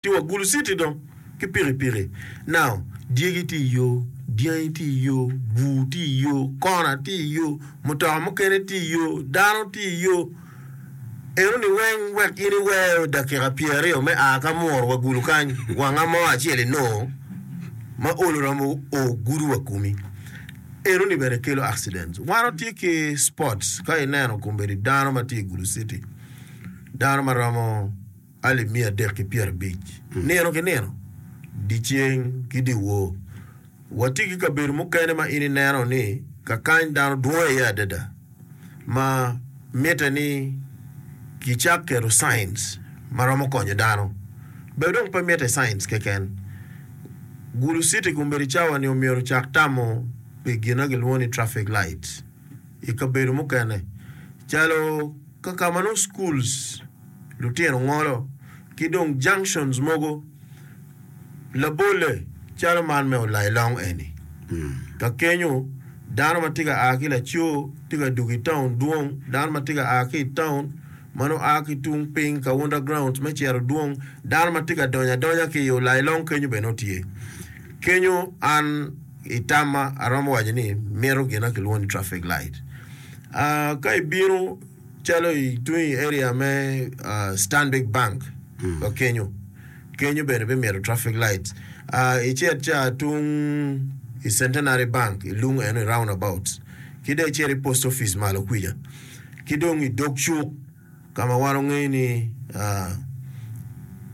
Ci wagulu citi do ki pikipiki. Now, dyegi tye i yo, dyangi tye i yo, bur tye i yo, kona tye i yo, mutoka mukene tye i yo, dano tye i yo. Enoni weng wek in iweo dakika pyeraryo me a ka muro wagulu kany, wanga mo acel inongo ma olo romo o gudo wa kumi. Enoni bene kelo accidents. Wan watye ki spots ka ineno kombeddi dano ma tye i gulu citi, dano ma romo. Alip miya adek ki pyerabic nino ki nino, dyeceng ki dyewor. Watye ki kabedo mukene ma in ineno ni kakany dano dwong aye adada ma mitte ni kicak keto science ma romo konyo dano. Bene dong pe mitte science keken. Gulu City kombeddi cawa-ni omyero ocak tamo pi gin ma gilwongo ni traffic lights i kabedo mukene calo ka ka ma nongo schools. lutino ngolo, ki dong junctions mogo labolle calo man me Olailong eni. Ka kenyo, dano ma tye ka a ki laco tye ka dwogo i taun dwong, dano ma tye ka a ki i taun ma nongo a ki tung piny ka undergrounds me cito dwong, dano ma tye ka donyo adonya ki i Olailong kenyo bene nongo tye. Kenyo an i tamma aromo waco ni mito gin ma kilwongo ni traffic light. Ka ibino. Calo i tung i area me Stanbic Bank wa kenyo, kenyo bene pe myero traffic lights. Icit ca tung i Centenary Bank i lung eno i round about ki dong icit i Post Office malo kwica ki dong i dog cuk ka ma wan wangeyo ni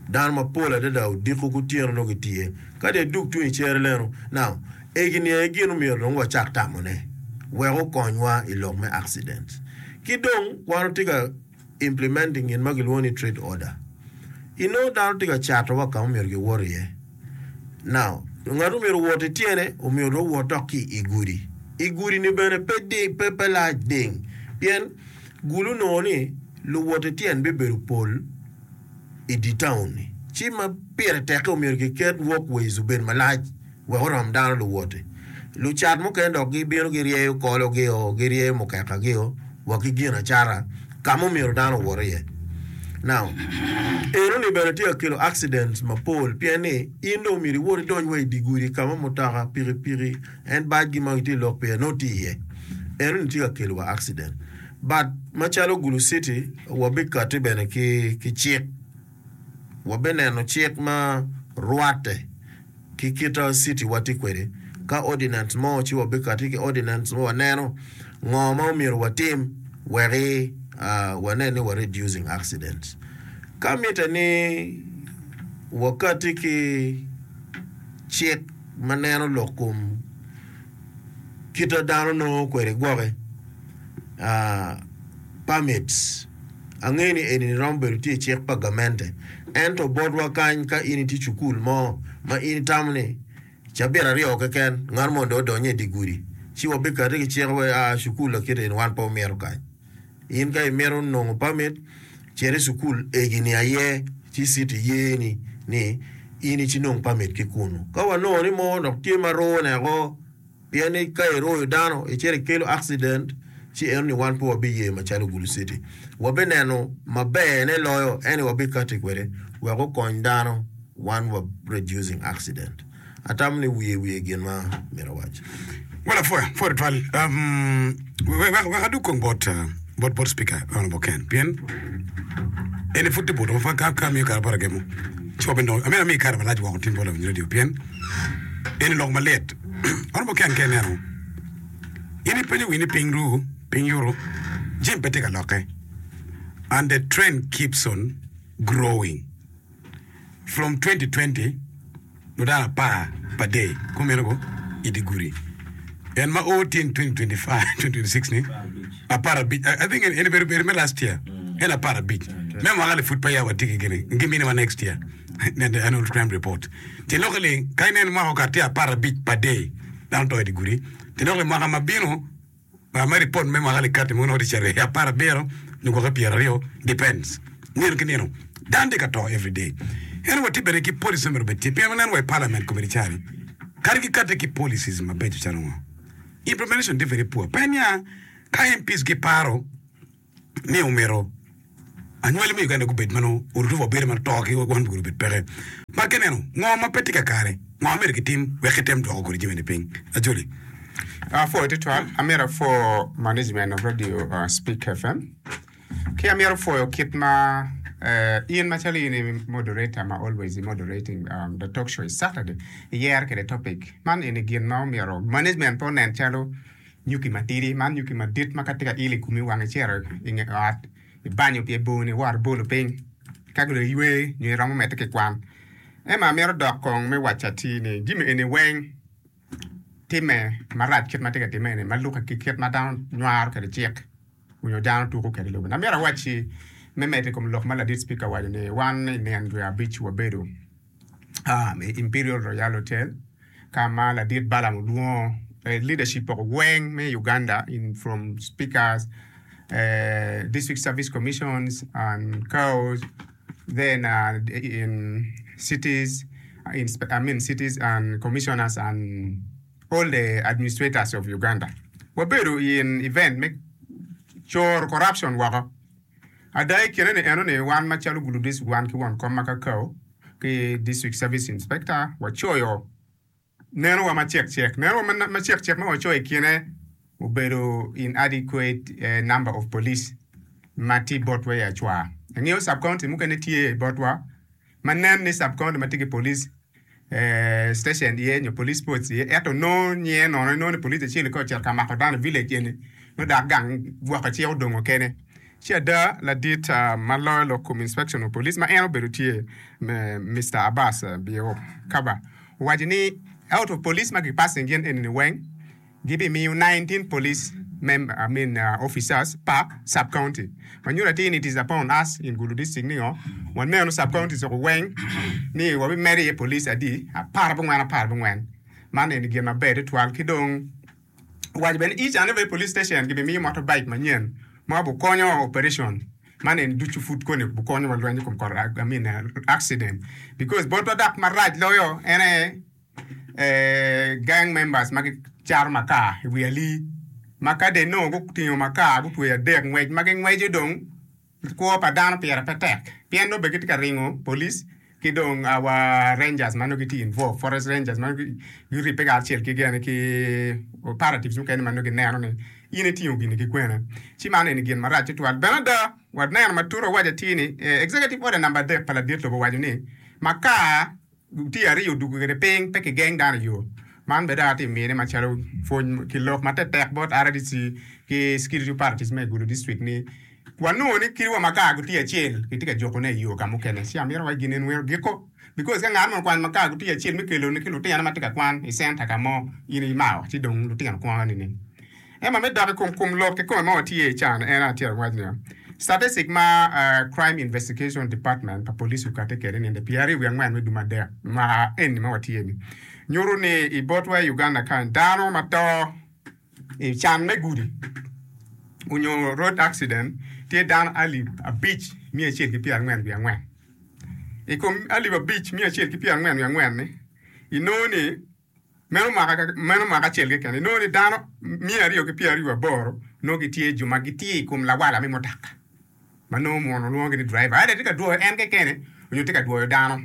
dano mapol adada odiko kutyeno dong gitye kadi adug tung i Cere leno. Now, Egini aye gin omyero dong wacak tamone wek okonywa i lok me accident. Ki dong wan watye ka implementing gin ma gilwongo ni trade order. Inongo dano gitye ka cato wa ka ma omyero giwot iye. Now, ngat ma omyero owot ityene omyero dong owot dok ki i gudi. I gudi-ni bene pe ding, pe, pe lac ding pien gulu onongo ni luwot ityen bibedo pol i dye taun-ni ci ma pire tek-ki omyero giket walkways obed malac. wek orom dano luwote. Lucat mukene dok gibino giryeyo kologio, giryeyo mukekagio wa ki gin acata ka ma omyero dano owot iye. Now, enoni bene tye ka kelo accidents mapol pien ni in dong omyero iwot idonj wa i dye gudi ka ma mutoka, pikipiki, en bac gin ma gitye ka lok pire nongo tye iye. Enoni tye ka kelo wa accident. But macalo Gulu City, wabikati bene ki cik. Wabineno cik ma rwatte ki kit ma citiwa tye kwede. Ka ordinance mo ci wabikati ki ordinance ma waneno ngo ma omyero watim weki wanen ni wa reducing accidents. Ka mitte ni wakati ki cik ma neno lok kom kit ma dano nongo kwede gwoki, permits. Angeyo ni eni-ni romo bedo tye i cik pa gamente. Ento botwa kany, ka in itye i cukul mo ma in itamo ni cabit aryo keken nganu moni dong odonyo i dye gudi, ci wabikati ki cik wek a cukul lakit eni wan pe wamito kany. In ka imito nongo pamit, cit i cukul egi-ni aye ci cit i yer-ni ni in icinong pamit ki kunnu. Ka wanongo ni mo dok tye ma rune woko, Pien ni ka iroyo dano, icito ikelo accident, ci enoni wan pe wabiye macalo Gulu City. Wabineno maber ne loyo en ni wabikati kwede wek okony dano wan wa reducing accident. Atamo ni wiye wiye gin ma myero awac. Well apwoyo apwoyo tutwal um wek wek adug kong bot uh, bot bot speaker honourable Ken pien eni pud tye buto ma ka ka amiyo kare apore gemo ci wabinongo amyero amiyi kare malac woko tin bot lawiny radio pien eni lok malit Mano mukene ka ineno, in ipenyo wii ni ping ruu, ping yuto, jami pe tye ka lokke and the trend keeps on growing from 2020 nyo dano apar per day kong meno go i dye gudi and ma oo tye in 2025, 2026 ni apar abic, I think en en bedo me last year en apar abic me mwaka-ni pud pe aye watye ki gini giminiwa next year and an old crime report. ci lok ni ka ineno mwaka okato tye apar abic pa dee dano to i dye gudi, ci lok ni mwaka ma bino ma me report me mwaka likati ma onongo tye cito iye apar abiro nyo gwoko pyera aryo depends nino ki nino dano tye ka to every day ento watye bene ki policies ma myero obed tye pien waneno wa i parliament komene ca ni kadi ki kati ki policies mabeco calo ngo implementation tye very poor pe niya ka MP giparo ni omyero anywali me Uganda gubed ma nongo oruto wa bedo ma to ki wan gubedo obed peke. Mar ki neno ngo ma pe tye kakare, ngo ma myero kitim wek kitem dwoko kodi jami ni piny. Ajoli. Apwoyo tutwal. Amyero apwo management of radio uh, Speak FM. Ki amyero pwoyo kit ma uh, in macalo in i moderator ma always i moderating um, the talk show is Saturday. Iyer kede topic. Man eni gin ma omyero management pe onen calo Nyuki matidi, man nyuki madit ma ka tye ka ilo i komi wangi cito i nge ot i banyo pye bongoni woro bolo piny. Ka dong iywe nyo iromo medde ki kwan. Emma mito dok kong me waco atir ni jami eni weng timme marac kit ma tye ka timme eni ma lukke ki kit ma dano nywaro kwede cik. nyo dano tuko kwede i lobo. Amyero awacci me medo i kom lok ma ladit Spika owaco ni wan i nino dwe abic wabedo i Imperial Royale Hotel ka ma ladit Balam olwongo leadership poko weng me Uganda in from Speakers, District Service Commissions and Cows, then in Cities, I mean Cities and Commissioners and All the administrators of Uganda wabedo in event me coro corruption woko. Ada i kine ni eno ni wan macalo Gulu District wan ki won kom ma Kakao ki District Service Inspector wacoyo neno wa macek cek. Neno wa macek cek ma wacoyo i kine obedo inadequate number of police ma tye botwa i Acwa. Angeyo sub county mukene tye botwa. ma nen ni sub-county ma tye ki police station iye nyo police post iye, ento nongo nyiye nono inongo ni police acel-li kong ocito ka mako dano i village eni nyo dok gang gwokke ci odongo kene. Ci ada, ladit ma loyo lok kom inspection of police ma en obedo tye me Mister Abbas Bio Kaba owaco ni out of police ma gipassing gin eni-ni weng, Gibimiyo 19 police member, I mean officers pa sub county. Ma nyuto atir ni it is upon us in Gulu district ni ngo wan meno sub counties oku weng ni wabimedo iye police adi apar abongwen apar abongwen. Man eni gin maber tutwal ki dong waco bene each and every police station gibimiyo motor bike manyen ma bukonyo operation. Man eni ducu pud koni bukonyo wa lweny ikom kor, I mean accident because botwa dok marac loyo en aye gang members ma gicato makar i wi alii ma ka dong nongo gutingo makar gutweyo adek ngwec ma gingweco dong kwo pa dano pire pe tek pien nongo bene gitye ka ringo police ki dong our rangers ma nongo gitye involved forest rangers ma guribbe kacel ki gin ki operatives mukene ma nongo gineno ni in itingo gini ki kwene ci man eni gin marac tutwal bene ada waneno matut awaco atir ni executive order number adek pa ladit lobo owaco ni makar Gutiya aryo dugo kwede piny pe kigeng dano i yo. Man bene dong atye ka mine macalo pwony ki lok ma tektek bot RDC ki Security Operatives me Gulu District ni wanongo ni kit wa makar gutiya acel kitye ka jukone i yo ka mukene. Ci amito wai gin en wero giko because ka ngat mo okwanyo makar gutiya acel me kelo ni ki lutino ma tye ka kwan i center ka mo in imako ci dong lutino kwongo nining? Ema me dok i kom kom lok kikome ma watye i can en aye atyer wac nio, Statistic ma Crime Investigation Department pa police okatte kwede i ninde pyeraryo wiye angwen me dwe me adek ma eni ma watye ni nyuto ni i botwa i Uganda kany dano ma to i can me gudi onyo road accident tye dano alip abic miya acel ki pyera angwen wiye angwen. I kom alip abic miya acel ki pyera angwen wiye angwen ni inongo ni Meno mwaka acel keken-ni, inongo ni dano miya aryo ki pyeraryo wa boro nongo gitye jo ma gitye i kom lawala me mutoka ma nongo munu lwongogi ni driver, either tye ka dwoyo en kekene nyo tye ka dwoyo dano.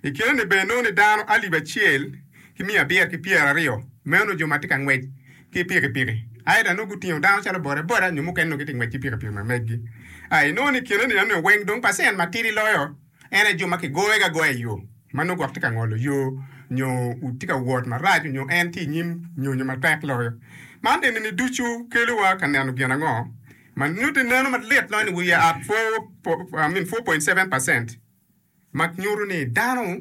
I kine-ni bene, inongo ni dano alip acel ki miya abiro ki pyeraryo, meno nongo jo ma tye ka ngwec ki pikipiki, either nongo gutingo dano calo bodaboda nyo mukene nongo gitye ka ngwec ki pikipiki ma meggi. Inongo ni i kine-ni eno weng dong pacent matidi loyo. En aye jo ma kigoyogi agoya i yo ma nongo gwok tye ka ngolo yo, nyo tye ka wot marac, nyo en tye i nyim nyonyo matek loyo. Man neni-ni ducu kelowa ka neno gin ango ma nyuto neno malit loyo ni we are four point seven percent ma nyuto ni dano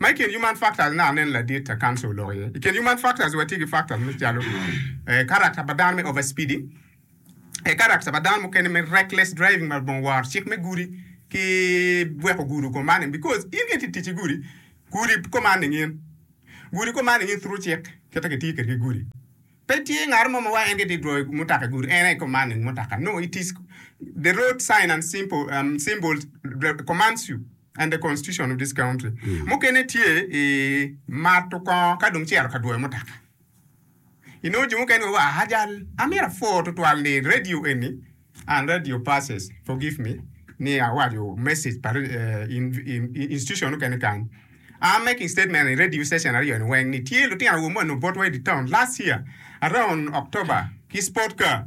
Ma i kin human factors ne anen ladit ta kanca oloko iye. I kin human factors watye ki factors macalo ee character pa dano me over speeding, ee character pa dano mukene me reckless driving ma dong waro cik me gudi ki weko gudi okomaning because in ka itye ka tic ki gudi, gudi komaning in, gudi komaning in through cik kite kitiyo kwede ki gudi. Pe tye ngat mo ma wa en gitye ka dwoyo mutoka i gudi en aye komaning mutoka no it is the road sign and simple, um, symbols commands you. and the constitution of this country mukene tye i mato kongo ka dong cito ka dwoyo mutoka inongo jo mukene wa ajal amira for tutwal ni radio eni and radio passes for give me ni awaco message pa in, in, in, institution mukene kany I'm making statement in radio station aryo ni weng ni tye lutino awomo anu botwa i town last year around October ki sport car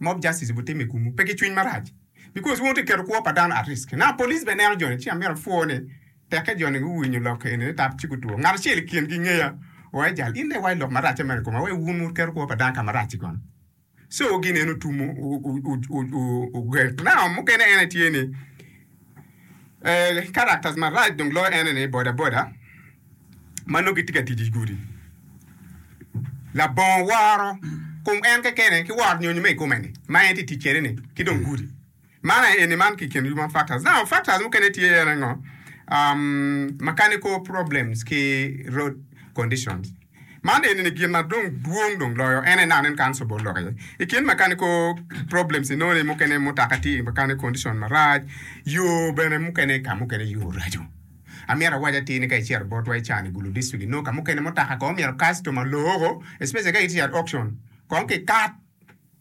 Mob justice butime kumu pe ki cwiny marac because wun wutye keto kwo pa dano at risk. Now police bene neno joni ci amito apwo ni tekke joni guwinyo lok eni ni tap ci gutwo ngat acel i kin gi ngeya oa ijal in dong iwaco lok marac ameno i koma wek wun wuketo kwo pa dano ka marac i kona so gin eni otumo ogek. Now mukene ene tye ni characters marac dong loyo ene ni boda boda. ma nongo gitye ka tic i gudi. Labongo woro kom en kekene ki woro nyonyo me i kome-ni ma en tye ka tic kwede-ni ki dong gudi. Man aye eni man ki i kin human factors. Now, factors mukene tye en aye ngo? Um, mechanical problems ki road conditions. Man eni-ni gin ma dong dwong dong loyo en aye naka nen kany cobo lok iye. I kin mechanical problems inongo ni mukene mutoka tye i mechanical condition marac, yo bene mukene ka mukene yo raco. Amyero awac atir ni ka icito botwa i cani, Gulu district, inongo ka mukene mutoka kong omyero customer loko, especially ka iti at auction, kong ki kat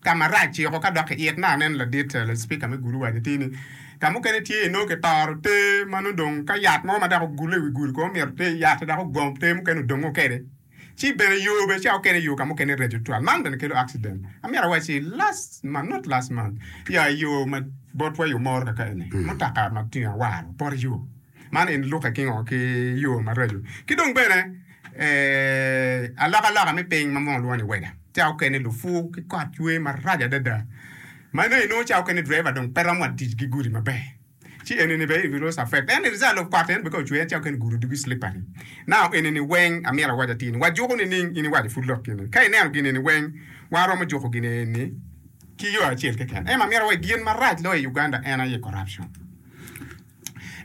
ka marac ci oko ka dok ki it na aneno ladit speaker me Gulu owaco atir ni ka mukene tye inongo ki toro ter ma nongo dong ka yat mo ma dok ogule i wi gudi kong omyero ter yat-ti dok ogom ter mukene odongo kede. ci bene yo bene ca okene yo ka mukene reco twal man bene kelo accident amyero awac ni last month not last month ya yo ma bot wa yo moro kaka eni mutaka ma tingo awara poto yo man en luke ki ngo ki yo ma reco ki dong bene alaka laka me ping ma mwongo lwongo ni weather ca okene lupwu ki kot cwer marac adada ma inongo inongo ca okene driver dong pe romo wa tic ki gudi maber. Ci enini bene iwi Lucafet, en Eria lok pat, en bene ka ocwer, en cako kene guro dugi slippery. Now, enini weng amito awac atir ni, wajuko nining? In iwaco pud lok gini. Ka ineno ginini weng, wan romo juko gine eni ki yo acel keken. Emma, amito awac gin marac loyo i Uganda en aye corruption.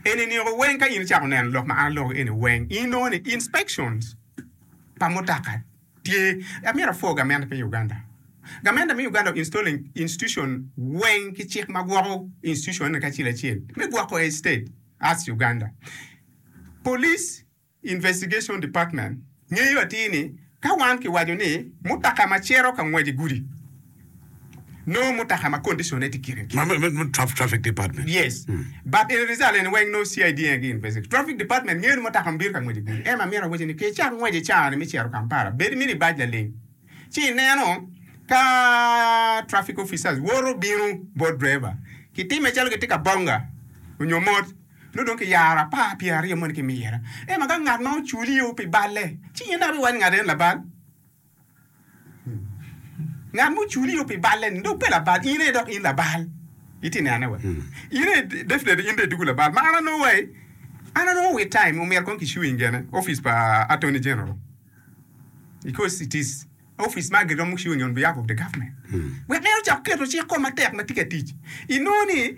Enini oko weng ka in icako neno lok ma an aloko eni weng, inongo ni inspections pa mutaka, Tye, amyero apwor gamente me Uganda. Gamente me Uganda o install institution weng ki cik ma gwoko institution eni kacel acel me gwoko ei state as Uganda. Police investigation department ngeyo atir ni ka wan kiwaco ni mutoka ma cito ka ngwec i gudi, Nongo mutoka ma kondicone tye kit kit. Ma me traffic department. Yes. But in result en weng nongo CID aye gi investigate. Traffic department ngeyo ni mutoka mabino ka ngwec i gudi. Ema myero awaci ni kee icak ngwec icane me cito Kampala bed mini bac laleng. Ci ineno ka traffic officers woto bino bot driver kitime calo gitye ka bonga onyo mot nongo dong kiyaro apar pyer aryo moni kimiyere. Ema ka ngat ma oculi o pi balle ci in dong ibiwaco ngat en labal. Ngat ma oculiyo pi balle-ni dong pe labal, in aye dok in labal. Itye nene wa? In aye definitely in dong idwogo labal. Ma an anongo wa, an anongo with time omyero kong ki suing gene office pa Attorney General because it is office ma giromo suing on behalf of the government wek en ocak keto cik ko matek ma tye ka tic. Inongo ni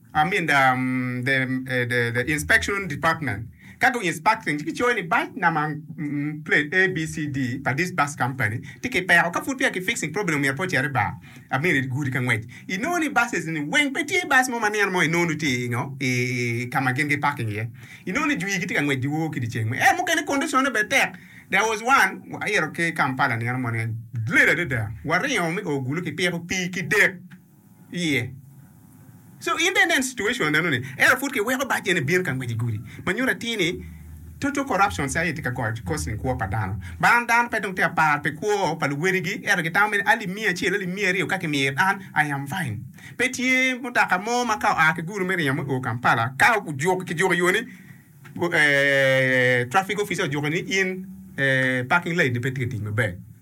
I mean the the the inspection department ka gu inspecting ci gicoyo ni bus number plate ABCD pa this bus company tye ki peko ka pud peya ki fixing problem omyero pe ocere bar I mean i gudi ka ngwec inongo ni buses ni weng pe tye bus mo ma nino mo inongo ni tye i nyo i ka ma gin gi parking iye inongo ni jwi gitye ka ngwec giwor ki dyeceng mo eh mukene condition ne bene tek there was one aito ki Kampala nino moni late adada waringo me oo gulu ki piko pii ki dek iye. So in dong inen situation meno ni ento pud kiweko bac eni bino ka ngwec i gudi ma nyuto atir ni total corruption aye tye ka goyo coz ni kwo pa dano. Ban dano pe dong tye ka par pi kwo pa luwadigi ento gitamo mere ni alip miya acel alip miya aryo ka kimir an I am fine. Pe tye mutoka mo ma ka oa ki gulu me ringo me o Kampala ka kijuko i yo ni traffic officer ojuko ni in parking lane ni pe tye ka tic maber.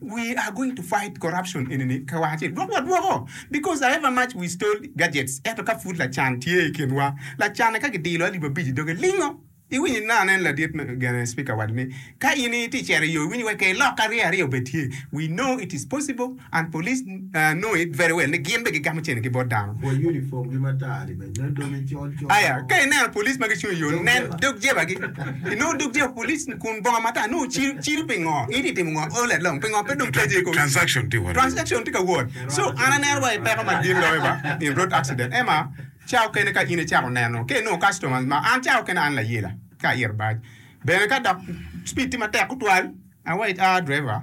We are going to fight corruption enini ka wacce dwok wadwoko because however much we stole gadgets ento ka pud lacan tye i kinwa lacanne ka gidilo alip abic i doge lingo iwinyo ina nen ladit gene speaker wad ni ka in itye icero yoo iwinyo wek kei lok aryo aryo bed tye we know it is possible and police know it very well ni gin bene gigamo cene ki bot dano. Aya, ka ineno police ma gicung i yo, nen dog jebagi. Inongo dog jeba police kun bongo matar nongo cido, cido pi ngo? In itimo ngo all along? Pi ngo pe dong keje kong? Transaction tye wot. Transaction tye ka wot. So an aneno wa i peko madit loyo ba in road accident ema ca okene ka in icako neno ka inongo customers ma an ca okene an layila ka aito bac bene ka dok speed tye matek tutwal I wait aa driver.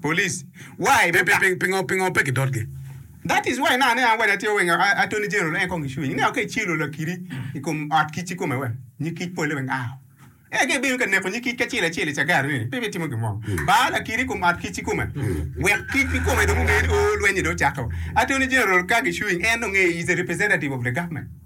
Police, Why? Pingo pe kidotgi? That is why nongo ni an wade atye weng Attorney General en kong isure ni ka icelo lakiri i kom ot kic ci kome weng nyig kic pole weng ao. Eka ibino ka neko nyig kic kacel acel i cagari ni pe ibitimo gin mo. Bar lakiri i kom ot kic kikome wek kic kikome dong obed ni oo lwenyi dong ocakke. Attorney General kong isure en dong ngeye he is a representative of the government.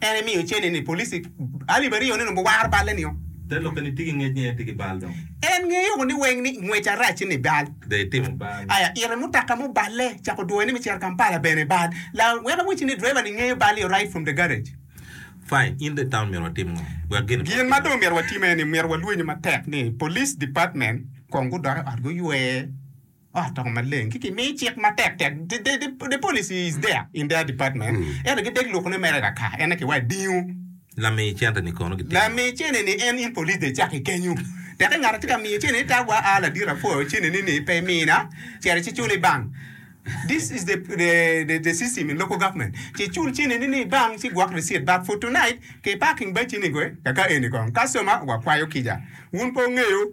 En aye miyo cene ni police alip aryo ni onongo waro balle nio. Te lokke ni tiki ngec ni en tye ki bal dong. En ngeyo ni weng ni ngwec arac ci ni bal. Be itimo bal. Aya ite mutoka muballe cako dwoyo ni me cito Kampala bene bal. La wek awecci ni driver ni ngeyo bal io right from the garage. Fine, in the town myero watim ngo wek gin Gin ma dong myero watim aye ni myero walweny matek ni police department kong gudok i ot guywe. Ot Oko Maleng ki kimi cik matek tek, the, the, the policy is there in their department, ento gidek lukone mere kaka en aye ki wa idingo. Lami cente-ni kono gitimo ngo? Lami cene-ni en in police dong icak ki kenyo. Teke ngat atye ka miyo cene ni ta wa, a ladit apwoyo cene-ni ni pe imina, cere ci icul ibang. This is the, the, the, the system in local government. Ci icul cene-ni ni ibang ci igwok receipt. But for tonight, ki parking baci-ni kwe kaka eni kong. Customer, wakwayo kica. Wun pe wungeyo.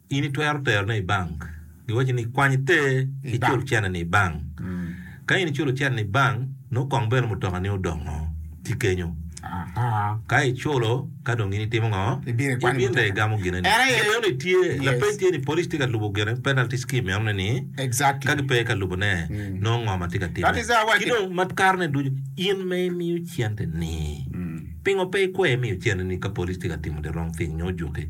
In itwero terone i bank. Giwacci ni, Kwany ter icul cene-ni i bank. Ka in iculo cene-ni i bank, nongo kong bene mutoka-ni odong ngo ki kenyo. Ka iculo, ka dong in itimo ngo? Ibino igamo gine-ni. Gin meno ni tye. Lapeny tye ni police tye ka lubo gine, penalty scheme meno-ni ni, ka gipe ka lubone, nongo ngo ma tye ka timme. Ki dong ma karene ducu, in ma imiyo cente-ni, pingo pe ikwer imiyo cene-ni ka police tye ka timo the wrong thing nyo ojuki?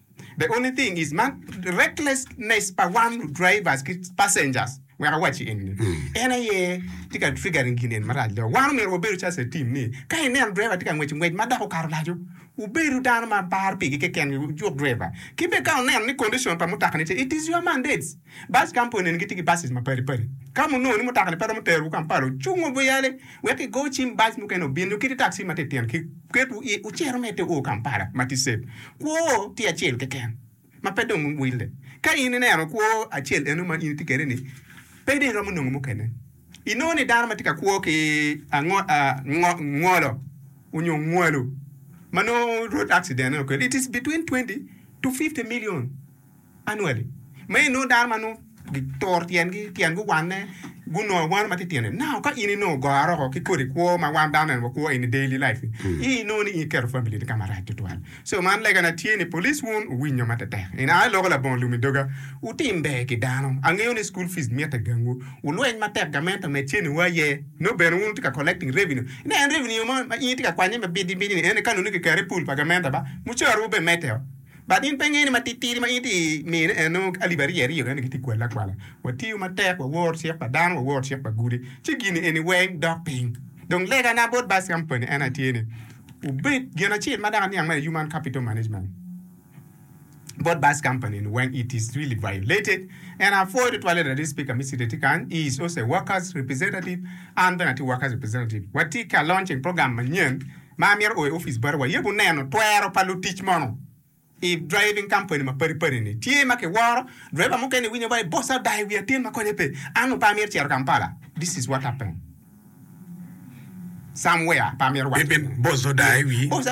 The only thing is man recklessness pa wan drivers ki passengers wek awaci eni en aye tye ka triggering gin eni marac dok wan omyero wabedo ca as a team ni ka ineno driver tye ka ngwec ngwec ma dok okato laco wubedu dano ma paro pigi keken-gi wujuk driver ki bene ka oneno ni condition pa mutoka-ni tye it is your mandates Bus company-ni gitye ki buses mapadi padi. Ka munongo ni mutaka-ni pe romo terowu Kampala, ocungo bweyale wek kigo cim bus mukene obin nyo kit taxi ma titino kiketwu i ocito me te o Kampala ma tye safe. Kwo tye acel keken ma pe dong wille. Ka in ineno kwo acel eno ma in itye kede ni, pe dong iromo nongo mukene. Inongo ni dano ma tye ka kwo ki ngolo onyo ngwalu ma nongo road accident-ne okelo, it is between twenty to fifty million. Anywali, ma en nongo dano ma nongo gituro tyengi, tyen guwanne, gunongo awano matitino-ni. Now, ka in inongo ogore oko ki kodi kwo ma wan dano eni wakwo in daily life-fi, i inongo ni in iketo family-ni ka marac tutwal. So, man legana tye ni police wun wuwinyo matetek. In a iloko labongo lum i doga, wutim ber ki dano. Angeyo ni school fees mitte gangwu. Wulweny matek gamente omed ceniwu aye. Nongo bene wun wutye ka collecting revenue. Inen en revenue mo ma in itye ka kwanye me bidi bidi-ni, ene ka nongo ni kikero i pool pa gamente ba, mucara-wu bene medde-o. But in pe ingeyo ni matitidi ma in itye ka miyone en nongo alip aryo aryo keken-ni gitye ka gwale agwala? Watiyo matek, waworo cik pa dano, waworo cik pa gude, ci gin-ni eni weng dok piny. Dong legana bot bac kampani en aye tye ni, wubed gin acel ma dok aniang mere Human Capital Management bot bac kampani eni weng it is really violated and I apwoyo tutwal adada ni Speaker me city tye kany, he is also a workers representative, an bene atye workers representative. Watye ka launching program manyen. ma amito o i opic bati wa, yeb oneno twero pa lutic mono i driving company ma padi padi ni tye ma ki woro, driver mukene i winyo wai bossa odayo wiya tyen ma konye pe, an o pe amito cito Kampala, this is what happened somewhere pe amito waco ne, bossa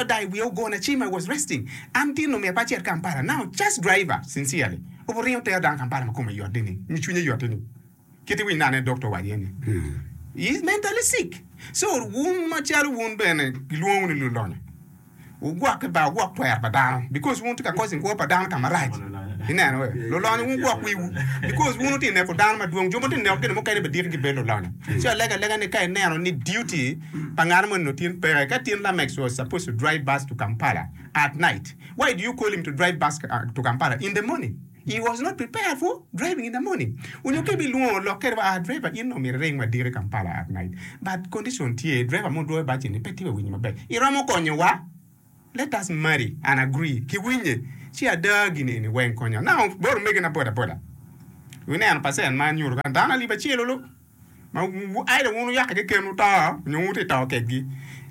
odayo wiya ogona cim I was resting, an tin omyero pe acit Kampala, now just driver sincerely oburingo tera dano Kampala ma kome yot ni ni nyo cwinye yot ni ni. Kit wi nane dok to waye ni he's mentally sick so wun macalo wun bene gilwongo ni lulonyo wugwokke ba wugwok twer pa dano because wun tye ka causing kwo pa dano ka marac ineno lulonyo wun wugwok wiwu because wun wutye neko dano madwong jo mutye neko gin mukene bene diki gibedo lulonyo so alega lega ni ka ineno ni duty pa ngano moni no tin peke ka tin Lamex was supposed to drive bus to Kampala at night why do you call him to drive bus uh, to Kampala in the morning He was not prepared for driving in the morning. Onyo ki bi lwongo lok kede wa, ah driver in omyero iring wa diki Kampala at night. But condition tye, driver mo dwoyo bac eni pe tye wa winyo maber. Iromo konyo wa? Let us marry and agree ki winye ci ada gin eni weng konyo. Now bot omege na boda boda. Wineno percent ma nyuto kany dano alip acel olu. ma aye dong wun wuyakki keken wuto nyo wutye to kedgi.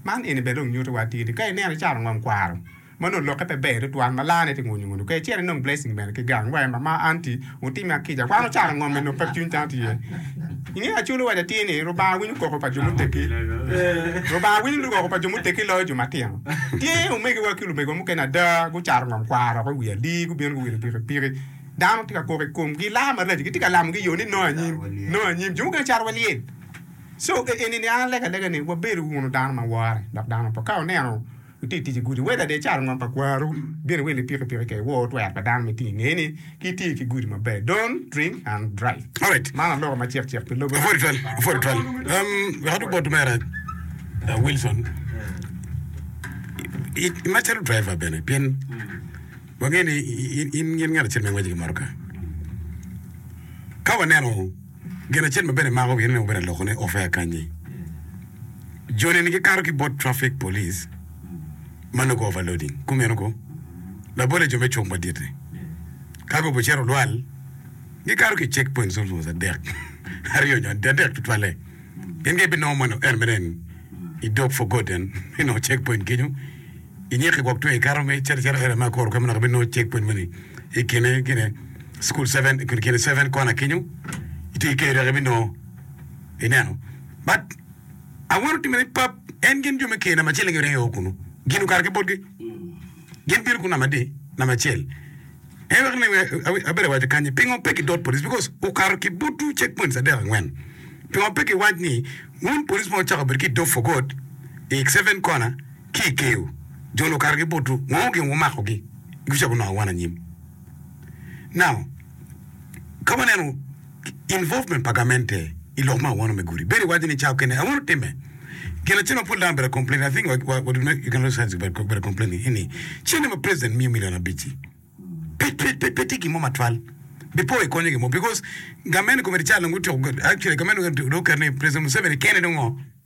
Man eni bene dong nyuto watir ni ka ineno caro ngom kwaro ma nongo lokke pe ber tutwal ma lane tye ngwunyu ngwunyu kece ni nongo blessing bene ki gang wa ema ma anti wutimya kica kwano caro ngom me nongo pep cwiny tango tye inge aculu wade atir ni Lubanga winyo koko pa jo muteggi Lubanga winyo koko pa jo muteggi loyo jo matino tye omegi wa ki lumegiwa mukene ada gucaro ngom kwaro oko i wi ali gubino guwilo pikipiki Dano tye ka koko i kom gi laa maraco gitye ka lamo gi yo ni nongo anyim nongo anyim jo mukene cato walyel so eni ni an lega lega ni wabedo wunu dano ma wore dok dano pe ka oneno itye tic igudi weda dong icaro ngom pa kwaru ibino wilo i piki piki ka iwor twero pa dano ma itye inge ni ki itye ki gudi maber don't drink and drive man aloko ma cek cek pi lobo ni. Apwod twal, apwod twal. Um, wek adwog bot mera uh, Wilson. I- Imac calo driver bene, pien Wangeyo ni in gin ngat acel ma ingweco ki mot ka. Ka waneno gin acel ma bene mako wino ni wabedo aloko ne ofe akanyi. Joni ni gikato ki bot traffic police ma nongo overloading kumeno ko labole jo me cuk madit ni ka kobo cito lwal gikato ki check points almost adek aryo nyo adek tutwalle gin ka ibinongo moni en mere en idog forgotten inongo check point kenyo Inyeki gwok tung ikato me cito acita ela ma akuru ka ma naka ibino nongo cik pwony moni i kine gine cukul seven i kine seven kona kenyo iti kede dok ibino nongo ineno but awano otimme ni pap en gin jo me kena ma ceng iringo io kunu gin okato ki botgi gin bino kunu nama adi nama acel en weko ni abedo awaco kany ni pingo pe ki dot police because okato ki botwu cik pwony sa dek angwen pingo pe ki wac ni wun police ma wucako bedo ki i dog fogot i seven kona ki i kewu, jo lukargi botwu, nongo gin wumakogi, guca gunoko wan anyim. Now, ka waneno involvement pa gamente i lok me awono me gudi, bedo iwaco ni ca okene awono otimme. Gin acel ma pol dano bedo ka complain, I think wa, wa, wa do not, you can not sense bedo bedo complain ni ni cente ma president miyo milion abic-ci pe pe pe pe tye gin mo matwal before ikonyo gin mo because gamente komedi ca dong gutyeko, actually gamente dong oketo ni president Museveni kene dong oo.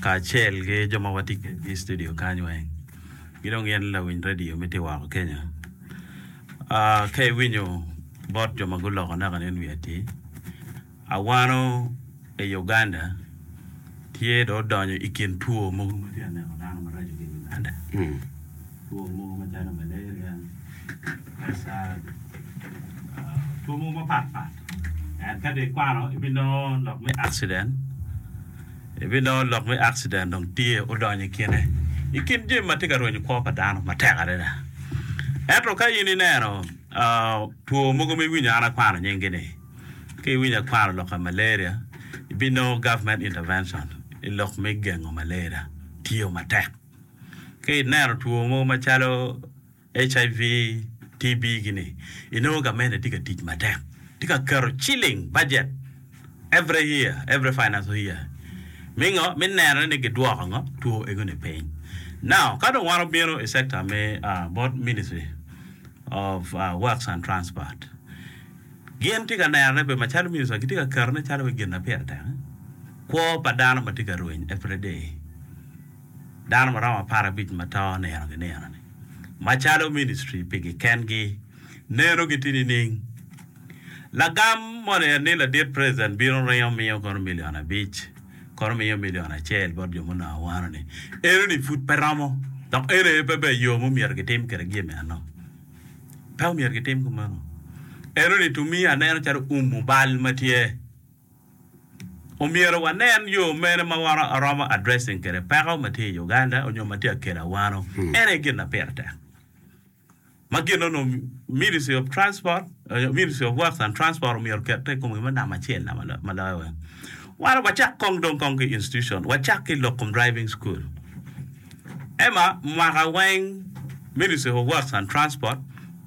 kacel ki jo ma watye kwedgi i studio kany weng ki dong in lawiny radio me tye woko Kenya. Uh, ka iwinyo bot jo ma guloko naka nen wi atir, awano i Uganda tye do odonyo i kin two mogo ma tye aneko dano maraco ki i Uganda. Two mogo macalo malaria, kanca, two mogo mapat pat. And ka dong ikwano, ibinongo lok me accident, ibinongo lok me accident dong tye odonyo i kine, i kin jami ma tye ka rwenyo kwo pa dano matek adada. Ento ka in ineno two mogo ma iwinyo an akwano nyingi-ni, ka iwinyo akwano lok pa malaria, ibinongo government intervention i lok me gengo malaria tiyo matek. Ka ineno two mogo macalo HIV, TB gi ni, inongo gamente tye ka tic matek, tye ka keto ciling, budget, every year, every financial year, me ngo? Me neno ni gidwoko ngo? Two ego ni piny. Now, ka dong wan obino i sector me bot ministry of works and transport, gin tye ka neno ne bene macalo minister gitye ka keto ne calo gin na pire tek, kwo pa dano matye ka rweny everyday. Dano ma romo apar abic ma to nino ki nino ni macalo ministri pigi ken gi neno gi ti nining? Lagam moni en ni ladit president bino ringo miyo kono million abic kono miyo million acel bot jo munongo wano ni eno ni pud pe romo dok eno aye pe ber yo mumyero ki tim kede giye me ano. Pe omyero ki tim kumeno. Eno ni to me aneno calo umu bal ma tye. Omyero wanen yo mene ma wan waromo addressing kwede peko ma tye i Uganda onyo ma tye ka kelo awano? Ene aye gin na pire tek. Ma gin onongo Ministry of Transport, onyo Ministry of Works and Transport omyero okette i kom gin me namba acel na ma loyo wa. Wan wacak kong dong kong ki institution, wacak ki lok kom driving school. Ema mwaka weng Ministry of Works and Transport,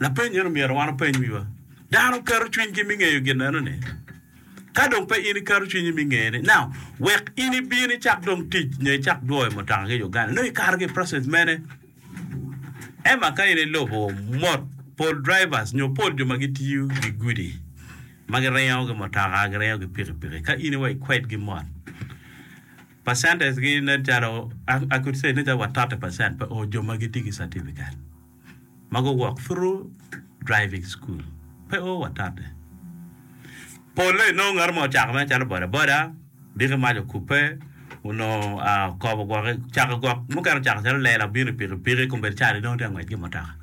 Lapeny eno myero wan openy wiwa. Dano oketo cwinygi me ngeyo gin meno-ni. Ka dong pe in iketo cwinyi me ngeye ni, now, wek in ibin icak dong tic nyo icak dwoyo mutoka ki Uganda, nongo ikato ki i process mene? Ema ka in ilubo mot pol drivers nyo pol jo ma gitiyo ki gudi, ma giringo ki mutoka, giringo ki pikipiki, ka in wa i kwedgi mot, percentage-gi nen calo, I could say, nen calo wa thirty percent pe o jo ma gitye ki certificate. ma guwok thuru driving school pe o wa tate. Polle inongo ngato mo ocako mere calo boda boda diki mac okube onongo okobo gwoki cako gwok mukene ocako calo lela obino i piki piki kun bene cani dong tye ka ngwec ki mutoka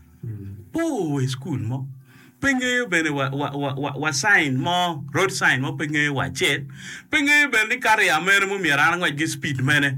pe o wa i school mo pe ngeyo bene wa wa wa wa wa sign mo road sign mo pe ngeyo wa acel pe ngeyo bene ni kato i amene mo myero an angwec ki speed mene.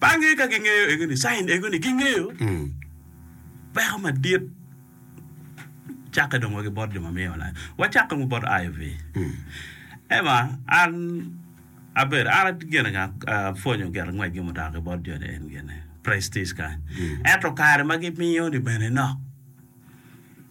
Bange ka gingeyo ego ni, sign ego ni, gingeyo peko madit cakke dong wa ki bot jo ma miyo lany. Wacakke mo bot IOV. Ema an abedo an at- gin nga apwonyo gin ngwec ki mutoka ki bot jo ni en gin prestige kany. Ento kare ma gimiyo ni bene nok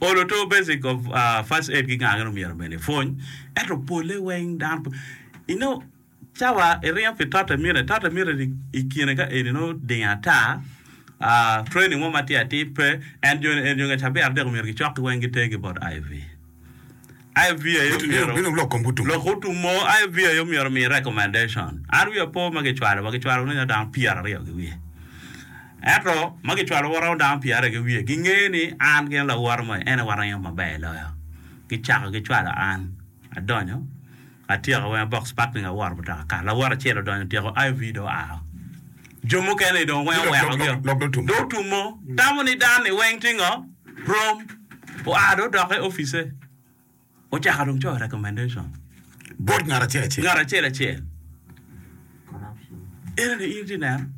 Olo two basic of first aid ki kanga kene omyero bene ipwony ento pole weng dano pe you know cawa iringo pi tote miti tote miti ikine ka eni nongo ding ata training mo matye atir pe en jo ni en jo ni acabit adek omyero gicokki weng gitergi bot iv. IVA aye myero bino lok kombutum. Lok utum mo IVA aye myero omi recommendation. An wiya po ma gicwalo wa, gicwalo wa nonyo dano pyera aryo ki wiye. Ento ma gicwalo wa romo dano pyera aryo ki wiye. Ginge ni an gin lawote mo en aye warange maber loyo. Gicako gicwalo an, adonyo. Atyeko awero bok sparkling aworo mutoka kar. Lawote acel odonyo otyeko iv dong oa-o. Jo mukene-ni dong weng owekogi-o. Dong otumo. Tamo ni dan-ni weng tye ngo? Rom. Oa dong odokke opice. Ocako dong coyo recommendation. Bot ngat acel acel. Ngat acel acel. Ento ni in itye nen?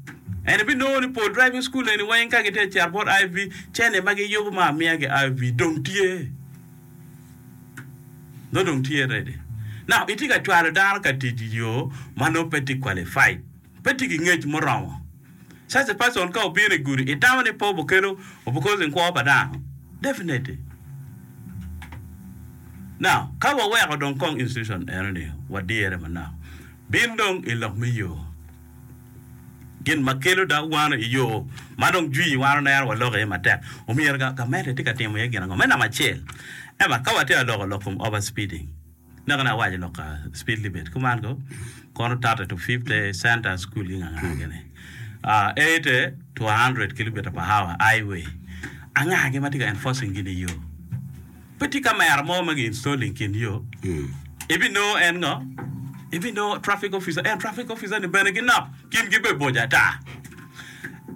En ebinongo ni pol driving school eni weng ka gitye ka cito bot iv cene ma giyubo ma amiyagi iv dong tye. Nongo dong tye ready. Now itye ka cwalo dano ka tic i yo ma nongo pe tye qualified. Pe tye ki ngec muromo. Such a person ka obino i gudi itamo ni pe obikelo obukozing kwo pa dano? Definitely. Now ka waweko dong kong institution eno ni wadyere manok. Bin dong i lok me yo, gin ma kelo dok wano i yo ma dong jwi i wano nero waloko iye matek, omyero ka mete tye ka timo iye gin ango? Me namba acel, ema ka watye ka loko lok kom over speeding, naka naka awaco lok ka speed limit kuman ko, kono thirty to fifty, center school ki nga nga gini, eighty to hundred kilometer per hour highway, anga gi ma tye ka enforcing gini i yo? Pe tye kamera mo ma gi-installing kin yo. Ibinongo en ngo? Ibinongo traffic officer. En traffic officer ni bene ginok, kingi bene boco ata.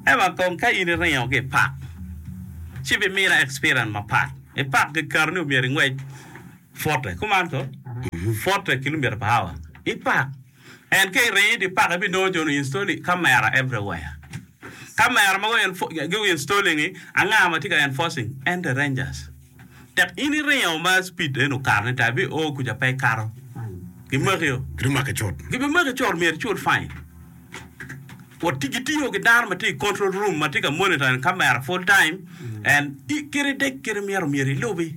Ema kong ka in iringo ki i park, ci ibimino experience mapat. I park kiketo ni myero ingwec forty, kuman kong? Forty kilumeter per hour i park. En ka iringo idi park ibinongo jo ni installing camera everywhere. Camera ma gu installing ni anga ma tye ka enforcing? En the rangers. Tek in iringo ma speed eni okato ni tar ibi o kuca pe ikato gimaki o. Giti maki cut. Gibi maki cut myero icul fine. Wa ti gitiyo ki dano ma tye i control room ma tye ka monitor camera full time and kit ideg kit imito myero ilubi.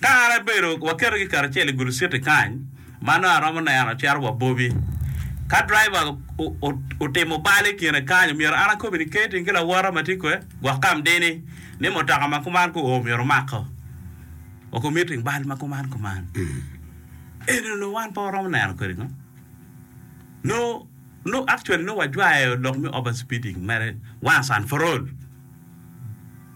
Kare obedo waketogi karacel i gudo citi kany ma nongo aromo neno cito wa Bobi. Ka driver otimo bal i kine kany omyero an acommunicate ki lawote ma tye kwe gwok ka mdini ni mutoka ma kuman ku o myero omako wa committing bal ma kuman kuman. Eni onongo wan pe waromo neno kwede ngo. Nongo actually nongo wajwayo lok me over speeding mere once and for all.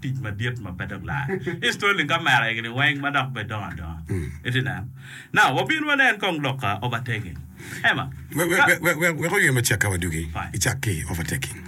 tic madit ma pe dok lare. Ictol ni ka mera egini weng ma dok bed dongo adonga. Iti nen. Now, wabin wanen kong lok ka overtaking. Emma, Wek, wek, ka. wek, wek, wek, wek oye me cakka wadugi. Fine. Icak ki overtaking.